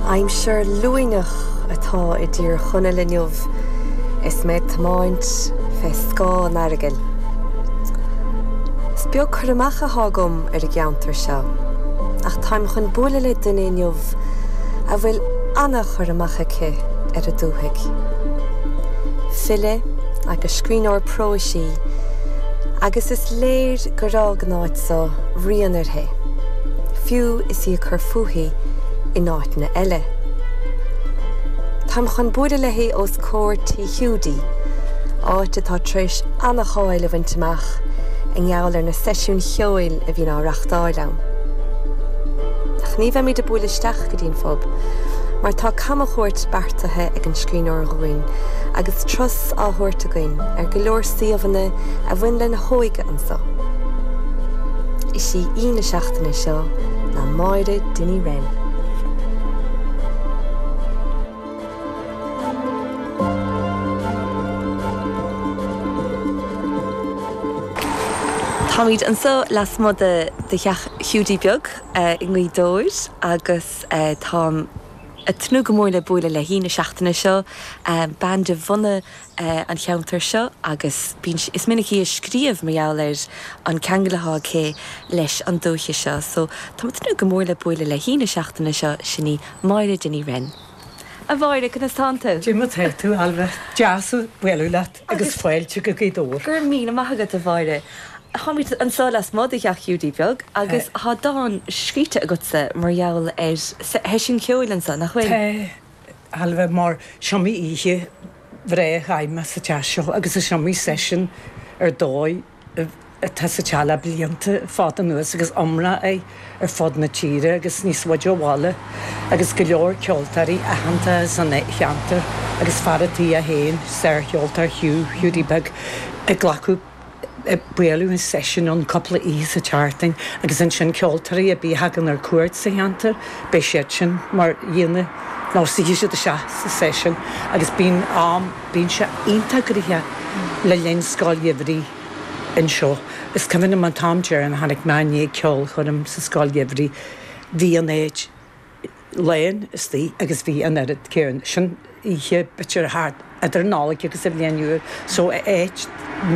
Aimsir luaineach atá i dTír Chonaill inniu is mé ag tiomáint fé scáth an Earagail. Is beag cur amach athá agam ar an gceantar seo ach táim chun bualadh le duine inniu a bhfuil ana-chur amach aici ar an dúthaigh. File agus scríbhneoir próis í agus is léir gur fhág an áit so rian uirthi. fiú is í ag cur fúithi in áiteanna eile. Táim chun bualadh léi os comhair Tí Hiúdaí, áit atá tar éis an-cháil a bhaint amach i ngeall ar na seisiúin cheoil a bhíonn á reachtáil ann. Ach ní bheimid ag bualadh isteach go dtí an phub, mar tá camchuairt beartaithe ag an scríbhneoir dhúinn agus turas á thabhairt againn ar go leor suíomhanna a bhain lena hóige, Gaeilge anseo. Is í aoi na seachtaine seo ná Máire Dinny Wren. Táimid anseo lasmuigh de theach Hiúdaí Beag i nGaoth Dobhair agus táim ag tnúth go mór le bualadh le haoi na seachtaine seo, bean de bhunadh an cheantair seo agus bíonn, is minic í ag scríobh mar gheall ar an ceangal atá aici leis an dúiche seo. So, táimid ag tnúth go mór le bualadh le haoi na seachtaine seo, sin í Máire Dinny Wren. A Mháire, conas atánn tú? Cad é mar atá tú, Ailbhe? Deas bualadh leat agus fáilte go Gaoth Dobhair. Go raibh míle maith agat, a Mháire. Táimid anso lasmuigh de theach Hiúdaí Beag agus tá dán scríte agatsa mar gheall ar sheisiún ceoil anso, nach bhfuil? Tá, Ailbhe, mar is iomaí oíche bhreá a chaith mé sa teach seo agus is iomaí seisiún ar dóigh atá sa teach le blianta fada anuas agus iomrá air ar fud na tíre agus níos faide ó bhaile agus go leor ceoltóirí aitheanta san cheantar agus fear an tí é féin, sár-cheoltóir Hugh Hiúdaí Beag Ó Gallchóir. bíonn an seisiún ann cúpla oíche sa tseachtain agus ansin ceoltóirí a bí a thagann ar cuairt sa cheantar beidh siad sin mar aíonna nó suífidh siad isteach sa seisiún agus bíonn am bíonn sé iontach gnoitheach le linn scoil gheimhridh anseo is cuimhin liom an t-am deireanach a tháinig mé i ndiaidh ceolchoirm sa scoil gheimhridh bhí an áit lán istigh agus bhí an oiread céanna sin oíche bitter thart idir an Nollaig agus an Bhliain Nua so áit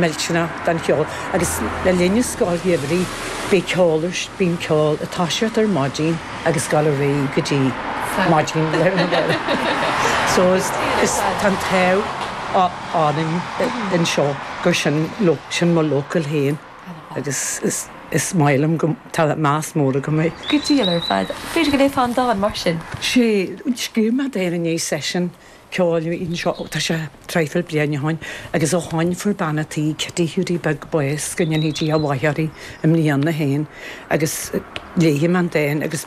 millteanach don cheol agus le linn an scoil gheimhridh bhí ceol ar bíonn ceol ag toiseacht ar maidin agus ag dul ar aghaidh go dtí maidin lae na Nollag so is is tá an t-ádh orainn anseo gur sin sin mo local féin. Agus is maith liom go. Tá meas mór agam ar Ghaoth Dobhair ar fad. B'fhéidir go léifeá an dán mar sin? Sé, scríobh mé dán i ndiaidh seisiún ceoil anseo ó tá sé traidhfil bliain ó shoin agus ó shoin fuair bean a' tí, Kitty Hiúdaí Beag, bás, go ndéanfaidh Dia a mhaith uirthi, i mbliana fhéin agus léifidh mé an dán agus.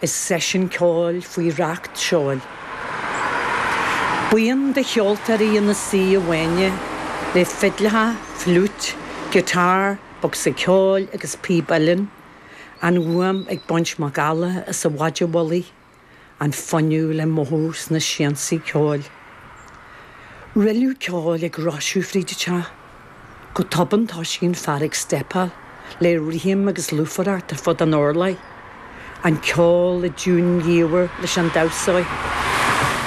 Is seisiún ceoil faoi racht seoil. Buíon de cheoltóirí ina suí i bhfáinne, le fidleacha, fliúit, guitar, bocsa ceoil agus píb uilleann, an fhuaim ag baint macalla as an mhaide mhullaigh, an fuinneamh le mothú sna siansaí ceoil. Rilleadh ceoil ag roiseadh fríd an teach. Go tobann toisíonn fear ag steipeáil le rithim agus lúfaireacht ar fud an urláir, an ceol i dtiúin dhiamhair leis an damhsóir.